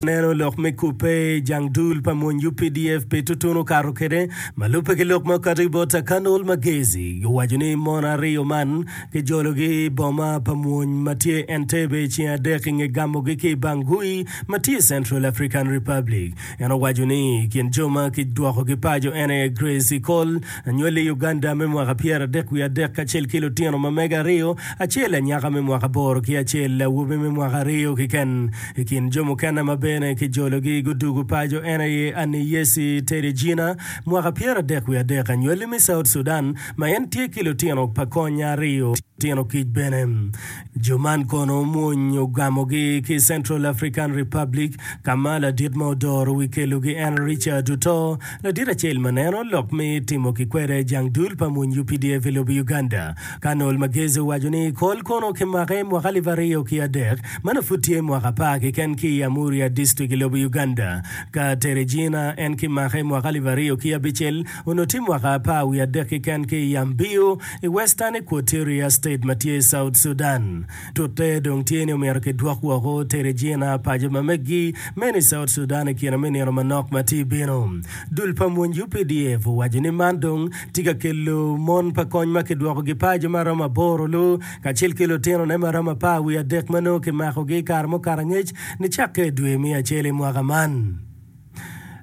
Neno lok me kubbe jang dul pa mony updf pi tutun okato kwede ma lubbe ki lok ma okato ki bot Akanol Magezi. Guwaco ni mon aryo man kijologi i boma pa mony ma tye Entebbe i ceng adek i nge gamogi ki i Bangui ma tye i Central African Republic. En owaco ni i kin jo ma kidwokogi paco en aye Grace Ikol, Anywali i Uganda me mwaka pyeradek wiye adek kacel ki lutino ma mege aryo, acel anyaka me mwaka aboro ki acel awobi me mwaka aryo kiken. I kin jo mukene ma bene kijologi gudwogo paco en aye Anneyesi Teregina, mwaka pyeradek wiye adek, anywali me South Sudan, ma en tye ki lutino pa konya aryo, lutino kic bene. Jo man kono omwony ogamogi ki Central African Republic ka ma ladit ma odoro wi kelogi en Richard oto. Ladit acel ma neno lok me timo ki kwede jang dul pa mony updf i lobo Uganda. Colonel Magezi owaco ni Col kono okimake mwaka alip aryo ki adek ma nongo pud tye mwaka apar keken ki i Amuria District i lobo Uganda. Ka tere Jina en kimake mwaka alip aryo ki abicel. Onongo tye mwaka apar wiye adek keken ki i Yambio i Western Equatoria State ma tye i South Sudan. Tute dong tye ni omyero kidwok woko Teregina, paco ma meggi, meno i South Sudan i kine me nino manok ma tye bino. Dul pa mony updf owaco ni man dong tye ka kelo mon pa kony ma kidwokogi paco ma romo aboro lu kacel ki lutinone ma romo apar wiye adek ma nongo kimakogi i kare mukato angec nicakke i dwe me acel i mwaka man.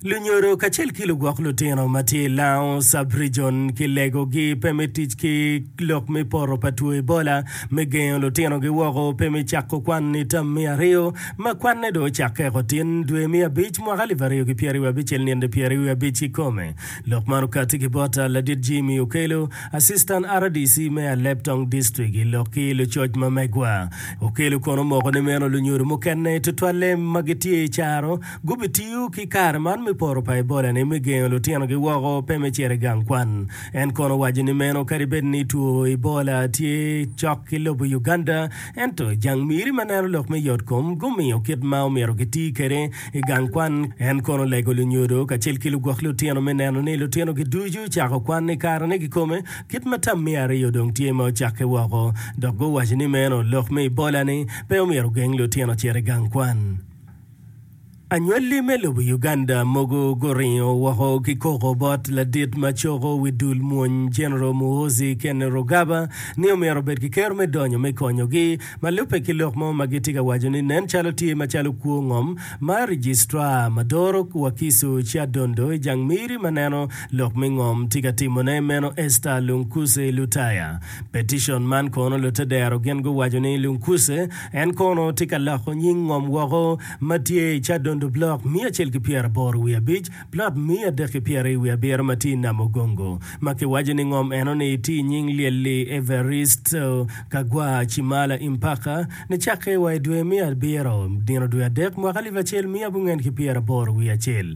Lunyodo kacel ki lugwok lutino ma tye i Lao Sub-Region kilegogi pe me tic ki lok me poto pa two Ebola me gengo lutinogi woko pe me cako kwan ni tam me aryo ma kwanne dong ocakke eko tin dwe me abic mwaka alip aryo ki pyeraryo abicel nino pyeraryo abic kikome. Lok man okati ki bot Ladit Jimmy Okello, Assistant rdc me Alep Tong District i lok ki lucoc ma megwa. Okello kono omoko ni meno lunyodo mukene tutwalle ma gitye i caro Gubitiyo ki kare man me poro pa Ebola-ni me gengo lutinogi woko pe me cito i gang kwan. En kono owaco ni meno kadi bed ni two Ebola tye cok ki lobo Uganda, ento jang miri ma neno lok me yotkom gumiyo kit ma omyero giti kwede i gang kwan. En kono olego lunyodo kacel ki lugwok lutino me neno ni lutinogi ducu cako kwan i karene kikome kit ma tam me aryo dong tye ma ocakke woko, dok guwaco ni meno lok me Ebola-ni pe omyero ogeng lutino cito i gang kwan. Anywalli me lobo Uganda mogo guringo woko ki koko bot ladit ma coko wi dul mwony General Muhoozi Kainerugaba ni omyero obed ki kero me donyo me konyogi ma lubbe ki lok mo ma gitye ka waco ni nen calo tye macalo kwo ngom ma Registrar ma doro Wakiso Kyadondo i jang miri ma neno lok me ngom tye ka timone meno Esther Lunkuse Lutaya Peticion man kono lute dero gin guwaco ni Lungcuse en kono tye ka loko nying ngom woko ma tye i Kyadondo Block miya acel ki pyera aboro wiye abic, Plot miya adek ki pyera i wiye abiro ma tye i Nam Ogongo ma ki waco ni ngom eno ni tye i nying Lyelli Everisto Kagwa Chimala Impaka ni cakke wa i dwe me abiro nino dwe adek mwaka alip acel miya abungen ki pyera aboro wiye acel.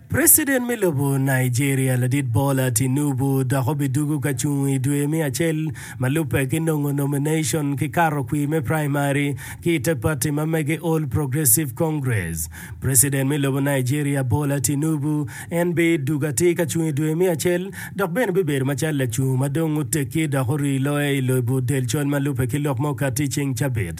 President me lobo Nigeria ladit Bola Tinubu dok obidugu ka cung i dwe me acel ma lubbe ki nongo nomination ki kato kwir me primary ki i te parti ma mege All Progressive Congress. President me lobo Nigeria Bola Tinubu en bi dugo atir ka cung i dwe me acel dok bene bibedo macalo lacungo ma dong otekki dok orii loye i lobo delcol ma lubbe ki lok ma okatti i ceng cabit.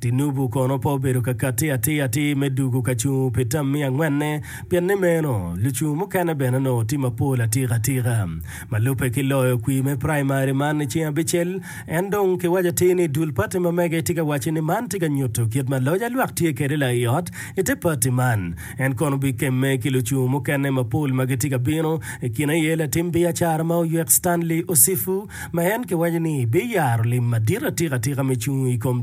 Tinubu kono pe obedo ka katti atir atir me dugu ka cung pi tam me angwenne, pien ni meno lucung mukene bene onongo tye mapol atika atika. Ma lubbe ki loyo kwir me praimari man i ceng abicel, en dong kiwaco atir ni dul pati ma mege tye ka wacci ni man tye ka nyuto kit ma loc alwak tye kwede la i ot i te pati man. En kono obikemme ki lucung mukene mapol ma gitye ka bino, i kine aye latim biacara ma oywek Stanley Osifu ma en kiwaco ni biyaro lim madit atika atika me cung i kom